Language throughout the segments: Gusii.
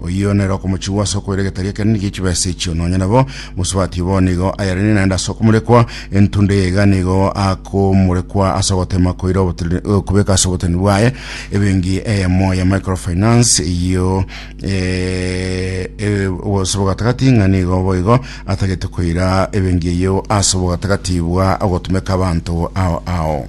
Oyio nere okomochigwa ase okoira egetari ekenene gie chibesa echio, nonya nabo mosubati bono igo ayarine naende ase okomorekwa, entunda eye iga nigo akomorekwa ase ogotema koira obotenene- eh, kobeka ase oboteneni bwaye ebenki eyemo ya microfinance eyio eh, eh, ase obogatagati ng'a nigo boigo atagete koira ebenki eyio ase obogatagati bwa ogotumeka abanto ao ao.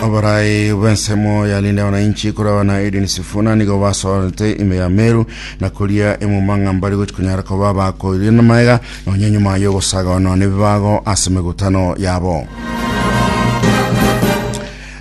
Oborai bw'ensemo ya Linda Wananchi korwa na Edwin Sifuna nigo basorete ime ya Meru na koria emumang'a mbari gochi kunyara koba bakoirie na maega nonye nyuma y'ogosagawanwa n'ebibago ase emegutano yabo.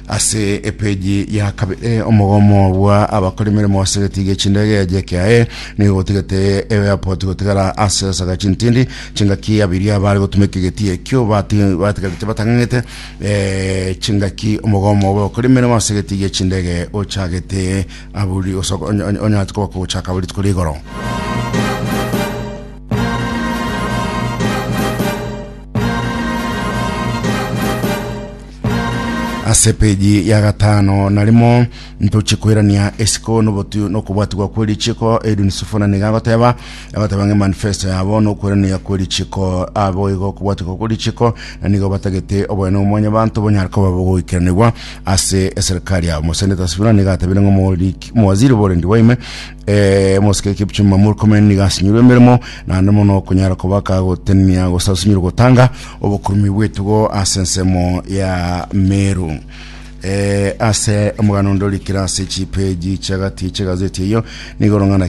Ase epeji ya kabere omogomo bwa abakora emeremo ase getigia chindege ya JKIA nigo gotigete airport gotigara ase esaga chintindi chingaki abiria bare gotumeka egetie ekio bati- batigarete batang'ang'ete eh, chingaki omogomo bwa abakora emeremo ase getigia chindege ochagete aburi osoko- onya- onya- onyarete koba kogochaka aburi tuko rigoro Ase epeji ya gatano narimo ntoche koirania esiko nobotu nokobwatigwa kwe richiiko. Edwin Sifuna niga agoteba agoteba ng'a manifesto yabo nokoirania kwe richiiko abo igo okobwatigwa kwe richiiko na nigo batagete oboyene bwa mwanyabanto bonyare koba bogoikeranigwa ase eserikari yabo. Omoseneta Sifuna niga atebire ng'a omoriki omowaziri borendi bwa ime Eh, omosike Kipchumba Murkomen nigo asinyirwe emeremo naende mono okonyara kobaka gotenenia gose asinyirwe gotanga obokurumi bw'etugo ase ensemo ya Meru. Eh, ase omogano onde orikire ase chipeji chiagati chi'egazeti eyio nigo orong'ana